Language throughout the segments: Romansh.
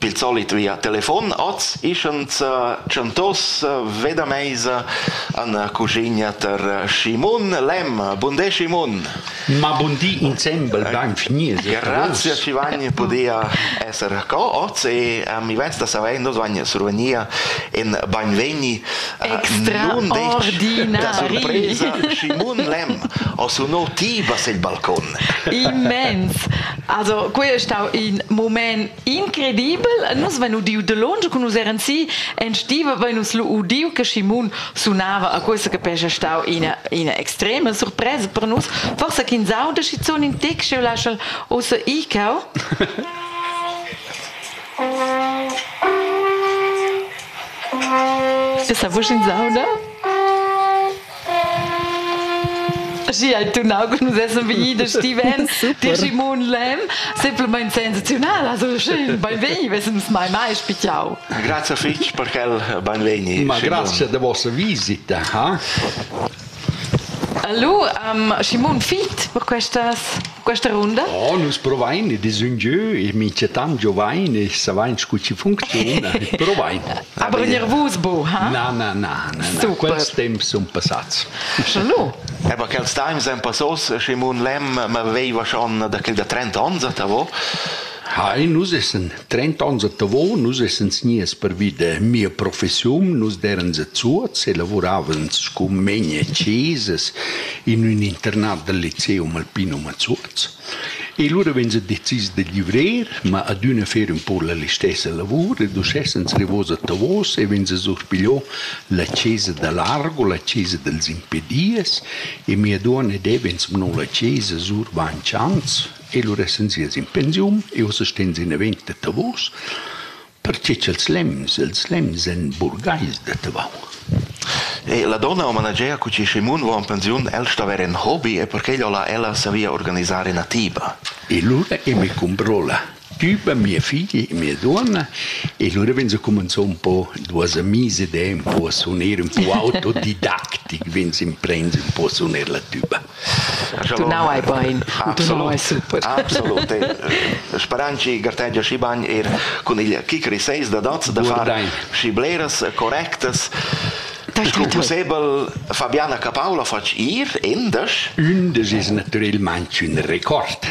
Il solit via telefon, oz ischens tschentos veda meisa an cuschigna ter Schimun Lem. Bundé Schimun! Ma bundi insembel bain finies. Grazie ci vagn podia esser co oz e mi vesta saver nos vagn survenia in bainvegni extraordinari. Da surpresa Schimun Lem ho sunò ti vas il balcon. Immens! Also, qui è stau in moment Incredibel, nus vein udiu de longe cun nus eran si en stiva vein nus lu udiu che Simon sunava a questa che pescha stau ina ina extrema surpresa per nus forsa ch'ins auda schizun in tec cheu laschal ossa icau Sa vusch ins auda? Schi hai tunau che nus essan vegni da Stiven, di Simon Lem, semplamain sensazional, also schön, beinvegni, vesens mai mai spichau. Grazie fitg per quel beinvegni. Ma grazie da vostra visita, ha? Hallo, um, Simon Fit per questas questa runda? Oh, nus provain ed es ün giö e minchatant giovain e savain scu chi funcziuna e provain. Aber nervus, bo, ha? Na, na, na, na, na. quels temps sun passats. Salud. Aber quels times èn passos, Simon Lem ma veiva schon da quel da 30 ans, atavo. Hi, nus essen Trent'onns a Tavo nus essans gnias pervi da mia professiun, nus derans a Zuoz e lavuravans scu megna a chesas in ün internat dal Lyceum Alpinum a Zuoz. E lura vegns a decis da livrer, ma adüna fer ün po la listessa lavur ed uschè essans rivos a Tavos e vegns a surpigliò la chesa da Largo, la chesa dels impedias e mia duonna deva insumno la chesa sur vainch ans e lur essan sias in pensiun e ussa ston sie naven da Tavos, pertge ch'els lems, els lems èn burgais da Tavau. E la donna o manager cu che Schimun va en pensiun, el sta ver en hobby e perquei la ella savia organisar ina tiba. E lura e me comprò la tiba mia figlia e mia donna e lura vegn se comenzò un po duas amise de un po a suoner un po autodidactic, vegn se imprens un po a suoner la tuba. Tunau ei bein, tunau ei super. Absolut. Sparanci gartegia schi bagn er cun il kicker 6 da dots da far schi bleras correctas Scu pussebel Fabiana Capaula fatg ir endasch? Ün de sis naturelmaintg ün record.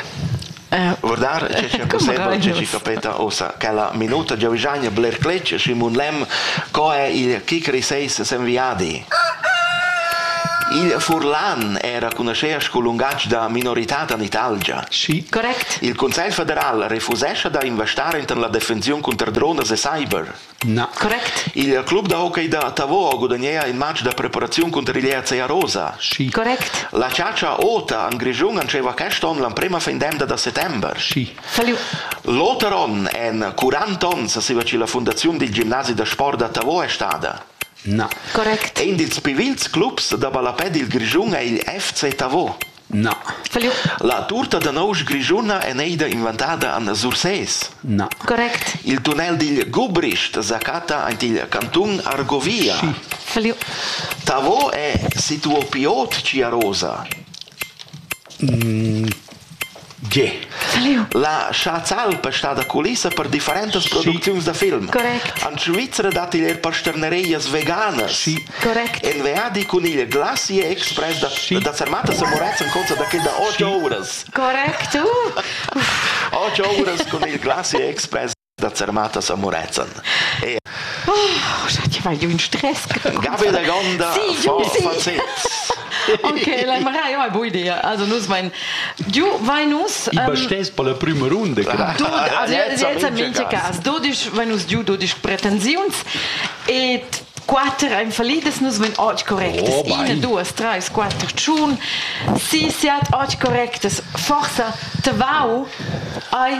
Guardar che sche pussebel che chi capeta ossa quella minuta Giovigagna bler cletg Simon Lem co è il kicker 6 sen viadi Il Furlan era conoscea sco lungatg da minorità da Italgia. Sì. Correct. Il Consiglio federal refusescha da investare in la defensiun contro drones e cyber. Na. Correct. Il club da hockey da Tavau gudagnea il match da preparaziun cunter il ERC Arosa. Schi. Correct. La chatscha ota en Grischun entscheiva quest onn l'emprema fin d'emda da settember. Schi. Salut. L'oter onn en 40 onns seva che la fundaziun dil gimnasi da sport da Tavau è stada. Na. Correct. Ein dils pivils clubs da ballapè dil Grischun è il FC Tavau. Na. La turta da nousch grischuna è neida inventada an Sursés. Na. Correct. Il tunnel digl Gubricht sa catta aint igl cantun Argovia. Tavo è situo pi ot Ciarosa. Tge? La Schatzalp è stada culissa per differentas producziuns da film. Correct. En Svizra datti er pasternereias veganas. Sì. Correct. En viadi cun il Glacier Express da, sì. da Sermatas a Moretzen conta da quella otg sì. ouras. Correct. Uh. Otg ouras cun il Glacier Express. da Zermatas a Murezzan. E Oh, ti vai giù in stress. Gabe da Gonda sì, giù, sì. Ok, la Marai è buona idea. Also nus vain giù vain nus. I bastes per la prima runda. Jetzt mincha cas. Dodisch vain nus giù dodisch pretensiuns e quatter ein fallidas, nus vein oggi correctas. Oh, Ina, duas, drei, quattro, tschun. Si siat oggi correctas. Forsa te vau ai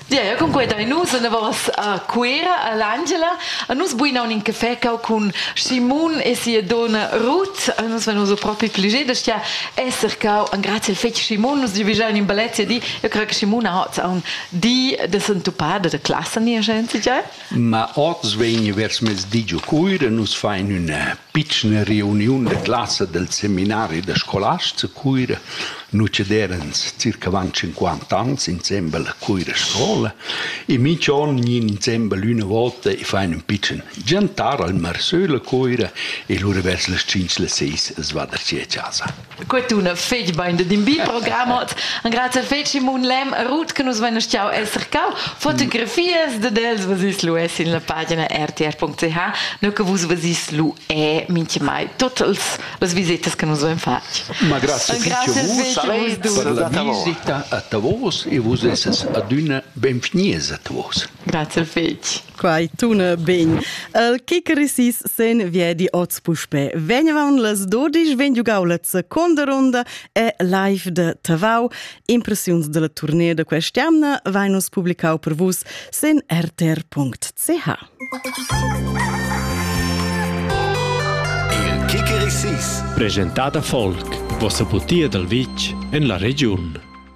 Yeah, cunquei da nus anavos a Cuera all'Angela a nus buina un in caffè cau cun Simon e sia donna Ruth a nus venus propi pli da stia esser cau an grazie al fetg Simon nus giuvigiau in bellezia di io creo che Simon ha oz un di da sentupada da classa nia gente già Ma oz vegni vers mezdi giu Cuira nus fain ün pitschna reuniun da classa dal seminari da scolasts a Cuira nu cederans circa avant cinquanta ans insembel a Cuira scola e minch on gnir insembel üna volta e fain ün pitschen giantar al Marsöl a Cuira e lura vers las tschinch las seis as va da sia chasa. Quet una fetg bain de din bi program ot. Angrazie fetg Simon Lem, Ruth che nus vein stiau esser cau. Fotografias de dels vasis lu es in la pagina rtr.ch. Nur che vus vasis lu e minche mai tots las visetas che nus vein fatg. Ma grazie fetg vus per la visita a Tavos e vus esses adüna benvgnies a Tavos. Grazie fetg. Quai tuna ben. El che cresis sen viedi oz puspe. Vegnevan las 12 ven giugaulets seconda ronda e live de Tavau. Impressiuns della tournée de quest'anna vai nos publicau per vus sen rtr.ch. Il Kikirisis, presentata folk, vossa butia dal vitg en la regiun.